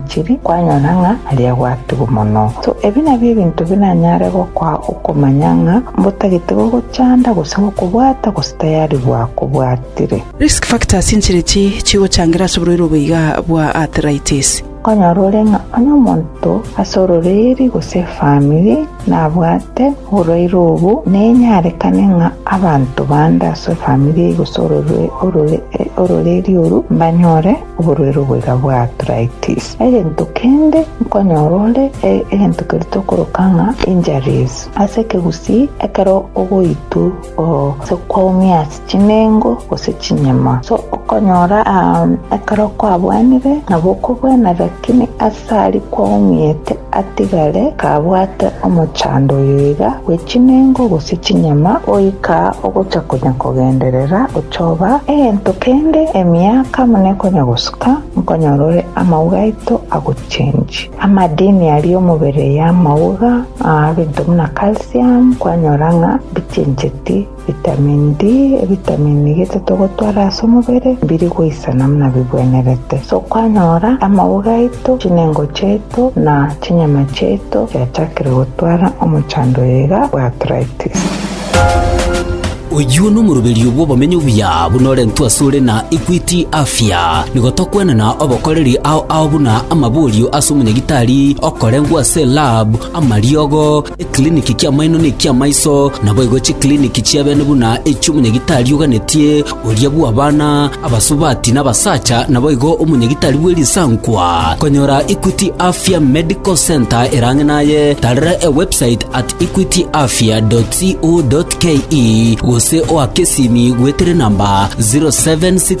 Chiri kwanyora ng'a aria gwatugwa mono. So ebi nabio ebinto bi nanyare gokoa okomanya ng'a mbotagete gogochanda gose gokobwata gose tayari bwakobwatire. Risk factors inchiri chi chigochangira ase oborwaire obo iga bwa arthritis. Nkonyora ore ng'a onye omonto ase ororeeri gose efamiri nabwate oborwaire obo, nenyarekane ng'a abanto bande ase efamiri gose ororeeri oru mbanyore oborwaire oboiga bwa arthritis. Egento kende nkonyora ore egento keria tokoroka ng'a injuries. Ase ekegusii ekero ogoitwa gose kwaumia ase chinengo gose chinyama so okonyora ekero kwabwenire nabo okobwena lakini ase aria kwaumiete atigare kabwate omochando oyo iga bwe chinengo gose chinyama, goika ogocha konya kogenderera ochoba egento kende emiaka buna ekonya gosuka, nkonyora ore amauga aito agochengi. Amadini aria omobere y'amauga, ebinto buna calcium, kwanyora ng'a mbichencheti. Vitamin D, Ebitamini gete togotwara ase omobere mbiri goisana buna bigwenerete. Ase okwanyora amauga aito, chinengo chiaito na chinyama chiaito chiachakire gotwara omochando oyo iga bwa arthritis. Oyio nomoroberio bw'obomenyo obuya buna orentwe asore na Equity Afya. Nigo tokwenena obokoreri ao ao buna amaborio ase omonyagitari, okorengwa ase lab, amariogo, Ekiriniki ki'amaino na eki'amaiso naboigo chikiriniki chi'ebeene buna echi'omonyagitari oganetie oria bw'abana, abasubati, na abasacha naboigo omonyagitari bwe risankwa. Konyora Equity Afya Medical Centre ere ang'e naye, tarera ewebsite at equityafya.co.ke gose oake esimi goetera enamba 0767